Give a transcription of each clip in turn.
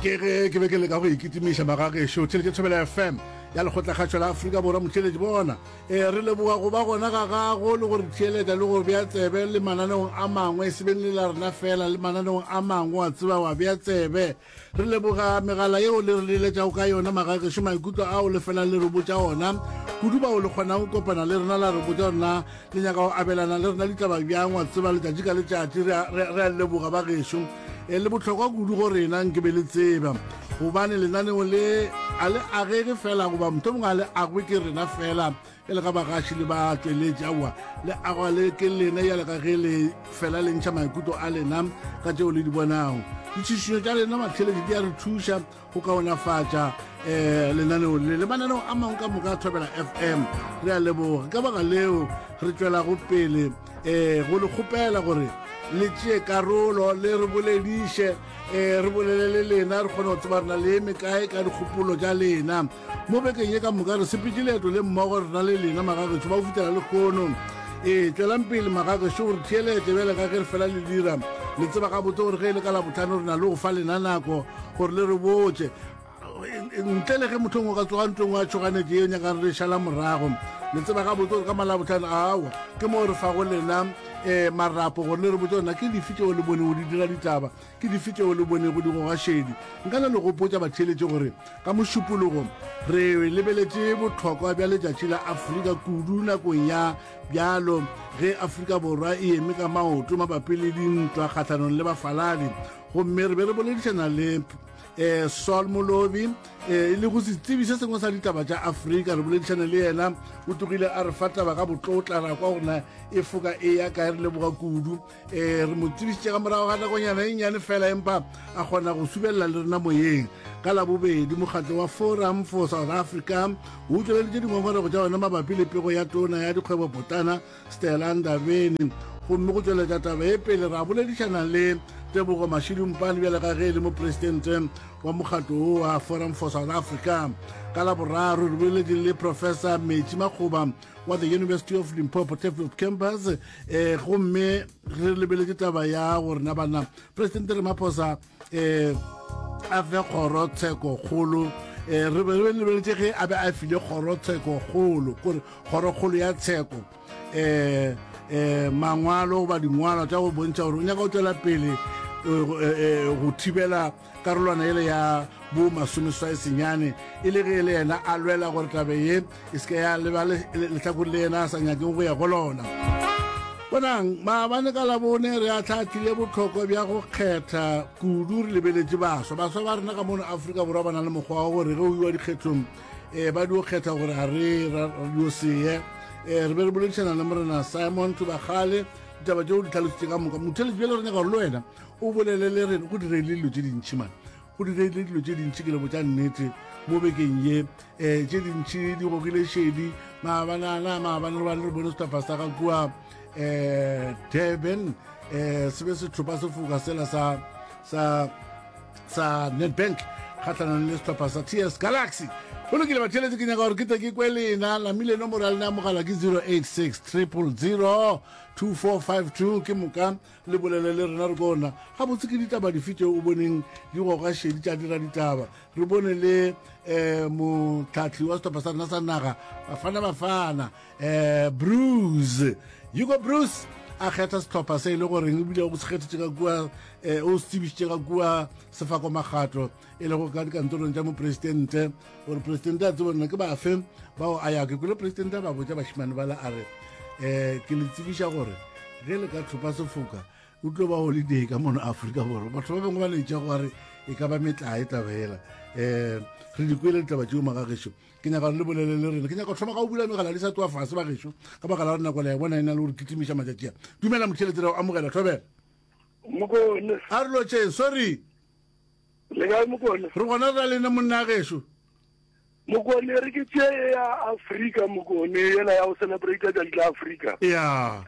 ke ge ke be ke leka go ikitimiša magagešo theletše thobela fm ya lekgotlakgatšo la aforika borwa motšweletši bona e re leboga go ba gona ga gago le go re theeletša le go bea tsebe le mananeong a mangwe e sebeng le la rena fela le mananeong a mangwe wa tseba wa bea tsebe re leboga megala yeo le re leletšago ka yona magagešo maikutlo ao le felang le re botša ona kudu bao le kgonang kopana le rena la re botša rena Le nyaka go abelana le rena ditaba bjang? Wa tseba, letšatši ka letšatši re a, re a, re a leboga bagešo. E le bohlokwa kudu go rena, nke be le tseba, gobane lenaneo le a le agege fela, goba mohlomongwe a le agwe ke rena fela, e le ga bagaši le batšweletši. Aowa, le agwa le ke lena yale ka ge le fela le ntšha maikutlo a lena ka tšeo le di bonago. Ditšhišinyo tša lena matheletši di a re thuša go kaonafatša um lenaneo le le mananeo a mangwe ka moka a thobela fm re a leboga ka baka leo re tswelago pele um go le kgopela gore le tšee karolo le re bolediše um re bolele le lena re kgone go tseba rena le eme kae ka dikgopolo tša lena mo bekeng ye ka moka re sepetse leeto le mmogo rena le lena magageso ba go fitlhela le kgono ee tswelang pele magageso gore theelete bjale ka ge re fela le dira le tseba ga botse gore ge e le ka la botlhano re na le go fa lena nako gore le re botse ntle le ge motho ngwe ka tsoga ntlong wa tshoganetse yo nyakang re šala morago le tseba ga botse gore ka malabotlhano awa ke moo re fago lena um marapo gore le re botse gona ke dife tseo le bone o di dira ditaba Ke dife tšeo le bonego di goga šedi? Nka na le gopotša batheeletši gore ka Mošupologo re lebeletše bohlokwa bja letšatši la Afrika kudu nakong ya bjalo ge Afrika Borwa e eme ka maoto mabapi le dintwa kgahlanong le bafaladi gomme re be re boledišana le eh, Saul Molobi eh, e le go setsebi se sengwe sa ditaba tša Afrika re boledišane le yena o tlogile a re fa taba ka botlotla ra kwa gore na e foka e ya kae re leboga kudu ee re mo tsebišitše ka morago ga nakonyana e nyane fela empa a kgona go subelela le rena moyeng ka labobedi mokgatlo wa forum for south africa o utlweleditše dingongorego tša yona mabapi le pego ya tona ya dikgwebo potana stela ndabeni gomme go tšweletša taba e pele ra boledišana le tebogo mashidumpane bjale ka ge e le mopresidente wa mokgatlo wo wa forum for south africa ka laboraro re boleletše le professor metši makgoba wa the university of limpopo teflop campus eh gomme re lebeletse taba ya gore na bana presidente ramaphosa eh a fe kgoro tsheko kgolo eh re be re lebeletse ge a be a file kgoro tsheko kgolo kore kgoro kgolo ya tsheko eh eh mangwalo ba dingwalo tsa go bontšha gore o nyaka go tswela pele eh, eh, eh, go thibela karolwana yele ya bo masomeswae senyane e le ge le yena a lwela gore tabe ye e se ka ya leba lehlakong le yena a sa nyakeng go ya go lona bonang maabane ka labone re atlhaatlhile botlhokwa bja go kgetha kudu re lebeletše baswa baswa ba rena ka mono aforika borwa ba na le mokgwa wa gore ge o iwa dikgethong um ba dio kgetha gore ga re radio seye um re be re boledišana le morena simon tubagale ditaba tšeo di tlhalositše ka moka motheletši bjale re nyaka gore le wena o bolele le rena go direile dilo tše dintšhi mane go direile dilo tše dintšhi ke lebo tša nnete mo bekeng ye um eh, tše dintšhi di gogile šedi maabanana maabane re bane re bone setapa sa ga kua um durban um eh, se be setlhopa se foka sela sa sa sa netbank kgatlhanong le setlhopha sa ts galaxy go lokile batheletse ke nyaka gore ke tle ke kwe lena lamile nomoro ya lena ya mogala ke 086 triple 0 2452 ke moka Le bolele le rena re bona gabotse ke ditaba dife tšeo o boneng di goga šedi tša dira ditaba. Re bone le um motlhahli wa setopha sa rena sa naga bafana bafana um bruce hugo bruce a kgetha setlhopha se e le goreng ebile o se kgethetše ka kua um o se tsebišitše ka kua sefako magato e lego ka dikantorong tša mopresidente gore presidente a tsebonna ke bafe bao a ya ke kule presidente a ba botša bašimane bala a re um ke le tsebiša gore ge le ka tlhopa sefoka o tlo ba holiday ka mono aforika borwa batho ba bangwe ba letša go are e ka ba metlae tabela um eh, re di kwele ditaba tšeo maga gešo ke nyaka gore le bolele le rena ke nyaka thoma ka go bula megala di sa tsoa fase ba gešo ka baka la gore nako la e bona e na le gore kitimiša matšatšia dumela motšheletsera o amogela thobela a re lotšhe sorry Le kae Mokone? Re gona ra lena monna gešo. Mokone re ke tše ya Afrika Mokone yela ya go celebrate tšatši la Afrika. Yeah.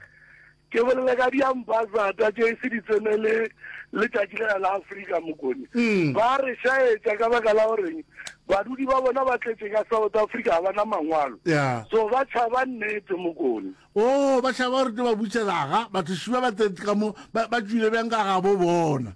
Ke bolela ka di ambassador tše se di tsene le le tšatši la la Afrika Mokone. Mm. Ba re shaetša ka baka la goreng badudi ba bona ba tletše ka South Africa ga bana mangwalo. Yeah. So ba tšhaba nnete Mokone. Oh, ba tšhaba gore tlo ba butselaga, batho šiba ba tletse ka mo ba ba tšwile bjang ka ga bo bona.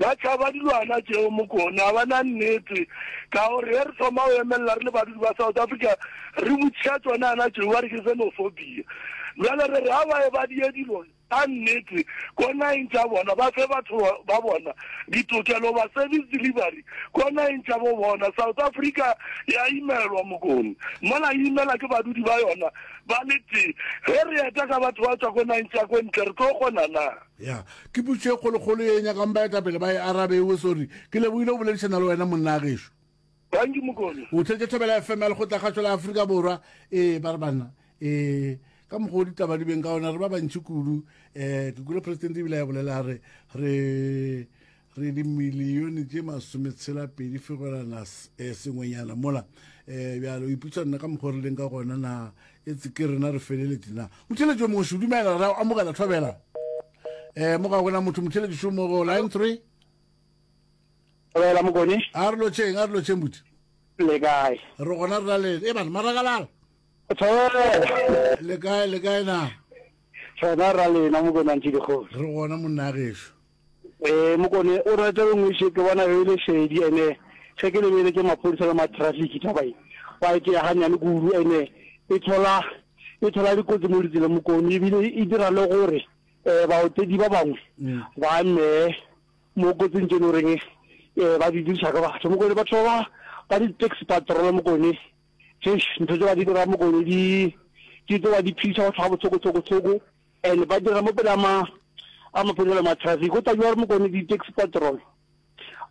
Ba tšhaba dilwana tšeo, Mokone. Ga ba na nnete. Ka gore ge re thoma go emelela re le badudi ba South Africa, re botšiša tšona yana tšeo, ba re ke xenophobia. Bjale re re ga ba ebadie dilo tša nnete ko nageng tša bona, ba fe batho ba bona ditokelo, ba service delivery ko nageng tša bo bona. South Africa ya imelwa, Mokone. Mola e imela ke badudi ba yona ba le tee. Ge re eta ka batho ba tšwa ko nageng tša ko ntle, re tlo kgona na? Ya, ke putso ye kgolokgolo ye e nyakang baetapele ba e arabe. Ewe, sorry. Ke lebohile go boledišana le wena, monna a gešo. Thank Mokone. O thetše Thobela FM ya Lekgotla-kgašo la Afrika Borwa. Ee, ba re banna. Ee, ka mokgwa o ditaba di beng ka ona, re ba bantši kudu. Um ke kwile Presidente ebile a e bolela, a re, re, re dimilione tše masometshela-pedi fegolana eh, sengwenyana mola um bjalo o iputsa nna ka mokgwa re leng ka gona na e tse ke rena re feleletše na motheletši o mongwe šudumela ra amogela thobela um mo ga gona motho motheletši šo mo go line three Thobela mokone. a re lotšheng a re lotšheng buti Le kae? re gona re laleng e bana maragalala Thobela. le kae le kae na Rena ra lena mokone a ntse dikgosi. re gona monna ya gešo Ee, Mokone o rata o ngweše ke bona yo e le šedi ene ge ke lebeletše maphodisa le matrafiki taba e ba e tšea ganyane kudu ene e thola e thola dikotsi mo ditseleng Mokone ebile e dira le gore um baotedi ba bangwe ba nee mo kotsing tse e le goreng um ba di diriša ka batho Mokone batho ba ba di-taxi patrol Mokone eish ntho tse ba di dira Mokone di di tlo ba di phidisa batho ga botshokotshokotsoko and ba dira mo pele a ma a maphodisa le ma traffic go tla jwa re mokone di taxi patrol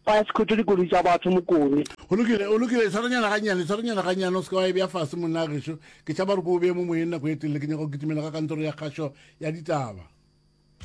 ba ya sekhotho dikoloi tsa batho mokone o lokile o lokile tshwaranyana ga nyane tshwaranyana ga nyane o se ka wa e bja fase monna a gešo ke tšhaba gore ko o beye mo moyeng nako e telele ke nyaka go kitimela ka kantoro ya kgašo ya ditaba